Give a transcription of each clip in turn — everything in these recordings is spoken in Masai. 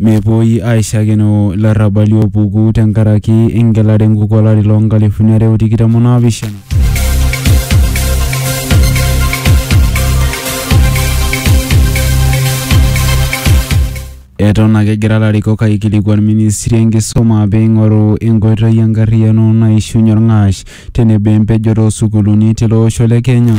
Mepuoi aaishakeno ilarrabali oopuku tenkaraki engelare enkuku olari loo nkalifuni are o tikitam o naapishana. Eton ake egira larikok aikilikuan ministri enkisuma pee eing'oru enkoitoi enkarriyano naishiunye olng'ash tenebo empejoto oo sukuuluni tilo osho le Kenya.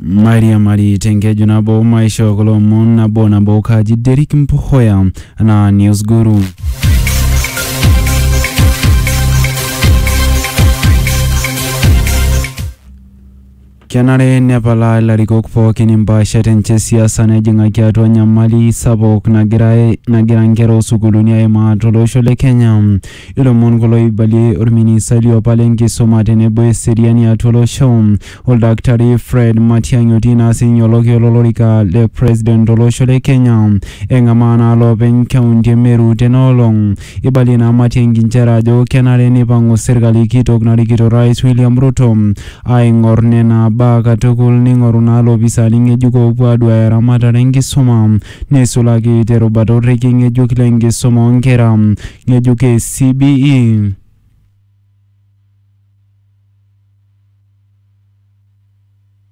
mairiamari tenkeju nabo maishoo kulo omon nabo nabo kaji Derrick Mpuhoya anaa News Guru. Kenare nepalaa ilarikok pookin impaashat enche e siasa nejing'aki atua enyamali sapuk nagira nagira nkera oo sukuuluni aimaa to losho le Kenya. Ilomon kulo oibalie olministai liopa le nkisuma tenebo eseriani atua olosho, Oldaktari Fred Matiang'i otii naa sininye olokiyo lo lorika le president to losho le Kenya eng'amaa naa loopeny kaunti e Meru tena olong. Eibalie ina amati e nkinchera ajo kenare neipang'u serkali kitok narikito Orais William Ruto aaing'or nena baa katukul neing'oru naa loopisaani ng'ejuko oopuo aaduaya eramatare enkisuma neisulaki te rubata orrekie ng'ejuk le nkisuma oo nkera ng'ejuk e CBE.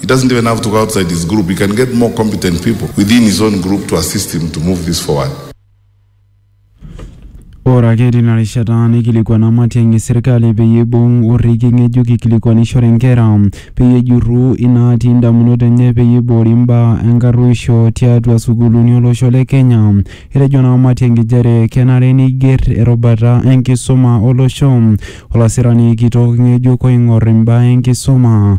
He doesn't even have to go outside his group. He can get more competent people within his own group to assist him to move this forward. Ore ake tina rishata neikilikuana Matiang'i serkali peyie eibung orrekie ng'ejuk eikilikuanishore nkera peyie ejurru inaatii indamunot enye peyie eiboori imbaa enkarruisho tiatua sukuuluni olosho le Kenya. Etejo naa Matiang'i nchere kenare neiger erubata enkisuma olosho olasirani kitok ng'ejuk oing'or imbaa enkisuma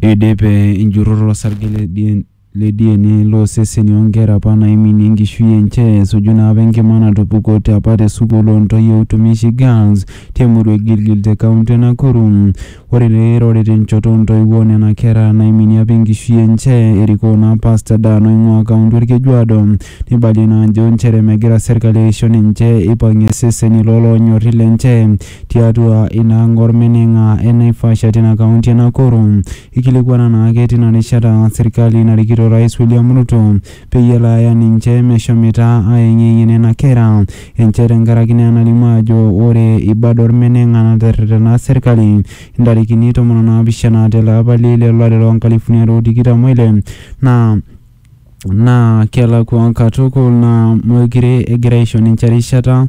Eidipe enjurore osarge le DNA loo seseni oo nkera apa naiminie enkishui enche esuju naa apa enkima natupukote apa te sukuul oo ntoyie e Utumishi Girls te murua e Gilgil te kaunti e Nakuru. Ore te erore te nchoto oo ntoiwuo oo nena kera naiminie apa enkishui enche erikoo naa Pastor Dan oing'uaa kaunti o Lkejuado neibalie naa ajo inchere megira serkali aisho ninche eipang'ie iseseni loo loonyori lenche. tiatua ina ang olmeneng'a e Naivasha tina kaunti e Nakuru. Eikilikuana naake tina rishata serkali narikito Orais William Ruto peyie elo aya ninche meshomoita aayeng'iyeng'ie nena kera enche tenkaraki naa enalimu ajo ore ibad olmeneng'a naterretena serkali intarikini tomon o naapishana te le apa le ile lo lari loo nkalifuni are o tikitam o ile naa naa kelakua katukul naa meekure egira aisho ninche erishata